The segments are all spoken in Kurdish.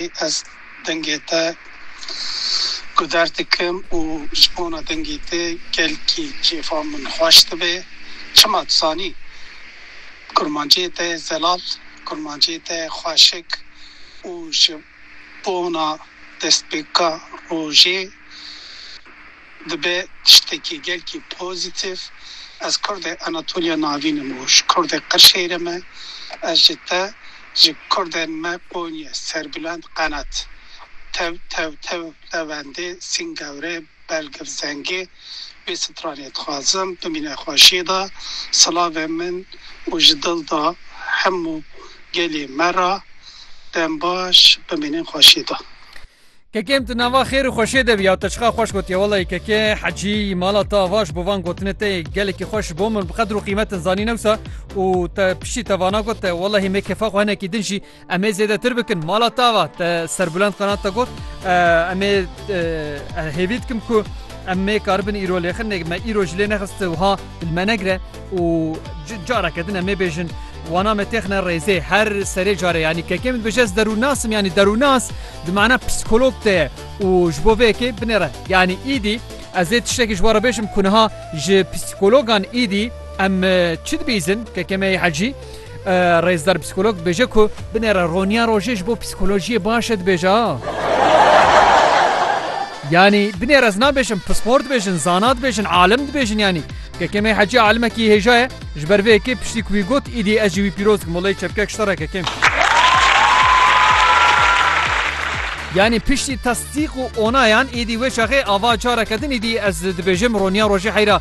Ez dengê te guder dikim û ji bona dengê te gelkî kêfa min xweş dibe. Çima dizanî kurmancê te zelal, kurmancê te xweşik û ji bona destpêka rojê. Dibe tiştekî gelkî pozîtîf. Ez kurdê Anatoliya Navîn im û ji kurdê Qirşêyrê me. Ez ji te, ji kurdên me Qonyê, Serbilend, Qenet, Tew, Tew, Tew, Lewendê, Singewrê, Belgiv, Zengê wê stranê dixwazim. Bimîne xweşî da silavê min û ji dil da hemû gelê me ra. Dembaş, bimînin xweşî da. Kekê em ti nava xêr û xweşê de bîya te çiqa xweş gotiye welayi kekê hecî mala te avaş bo van gotinê te yê gelekî xweş ji bo min bi qedr û qîmetin zanîn ewsa û te piştî te vana got te welahî me kefa xwe hinekî din jî em ê zêdetir bikin mala te ava te serbilend qanat te got em ê hêvî dikim ku em nê karibin îro lêxin nê me îro ji lê nexist wiha Dilmenegre û careke din em ê bêjin wana me têxine rêzê her serê carê yanî kekê min bêje ez derûnasim yanî derûnas di mana psîkolog te ye û ji bo vê yekê binêre yanî îdî ez ê tiştekî ji we re bêjim ku niha ji psîkologan îdî em çi dibîzin kekê me yê hecî Rêzdar psîkolog dibêje ku binêre roniya rojê ji bo psîkolojiyê baş e dibêje a. Yanî binêre ez nabêjim pispor dibêjin, zana dibêjin, alim dibêjin yanî. Kekemê hecî alimekî hêja ye ji ber vê yekê piştî ku wî got îdî ez jî wî pîroz dikim welay çepkek ji te re kekêm. Yanî piştî tasdîq û onayan îdî wê çaxê ava careke din îdî ez dibêjim roniya rojê heyra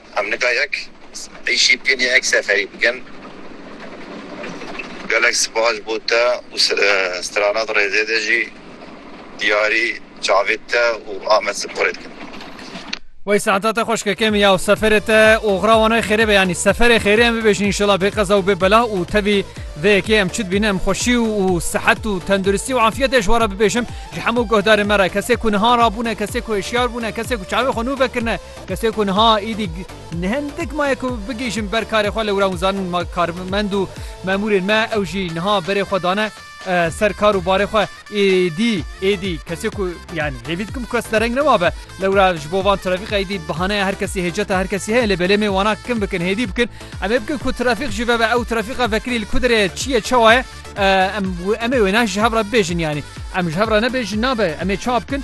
Em nika yek êşî bikin ya yek seferî bikin. Gelek spas bo te û stranat rêzê de jî diyarî çavê te û Amed Siporê dikim. Wey saeta te xweş kekê min ya û seferê te oxira wan wey xêrê be yanî seferê xêrê em bibêjin înşela bê qeza û bê bela û tevî vê yekê em çi dibîne em xweşî û sihet û tenduristî û afiyetê ji we re bibêjim ji hemû guhdarên me re kesê ku niha rabûne kesê ku hişyar bûne kesê ku çavê xwe nû vekirine Kesê ku niha êdî hindik maye ku bigihîjin ber karê xwe lewra hûn zanin ma karmend û memûrên me ew jî niha berê xwe dane ser kar û barê xwe êdî êdî kesê ku yanî hêvî dikim kes dereng nemabe lewra ji bo van trafîqa êdî bihaneya her kesî hêceta her kesî heye lê belê mê wana kim bikin hêdî bikin em ê bikin ku trafîq jî vebe ew trafîqa vekirî li ku derê çi ye çawa ye em em ê wêne ji hev re bibêjin yanî em ji hev re nebêjin nabe em ê çawa bikin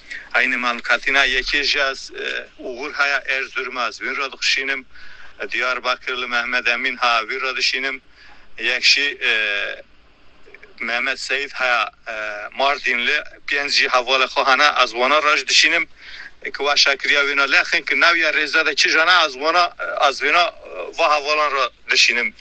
Aynê Mam Katina yekê jî ez Ugur haya Erzurumê ez wîn ra dixişînim, Diyarbakir li Mehmed Emîn ha wî ra dişînim, yek jî Mehmed Seyîd haya Mardîn li pênc jî hevalê xwe hene ez wana ra jî dişînim ke waşa kiriya wêna lexin ke nawiya rêza de kija ne ez wana ez wêna va hevalan ra dişînim.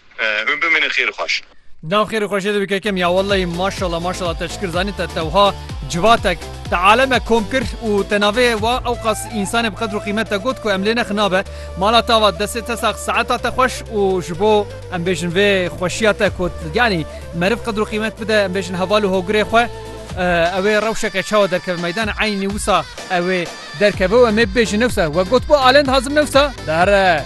Hûn bimînin xêr û xweş. Nav xêr û xweşê te bike kem ya wellehî maşallah maşallah te çikir zanîn te te wiha civatek te alemek kom kir û te navê wa ewqas însanê bi qedr û qîmet te got ku em lê nexinabe mala te ava destê te sax saeta te xweş û ji bo em bêjin vê xweşiya te ku yanî meriv qedr û qîmet bide em bêjin heval û hogirê xwe ew ê rewşeke çawa derkeve meydan eynî wisa ew ê derkeve û em ê bibêjin newsa we got bo alend hazim newsa dare.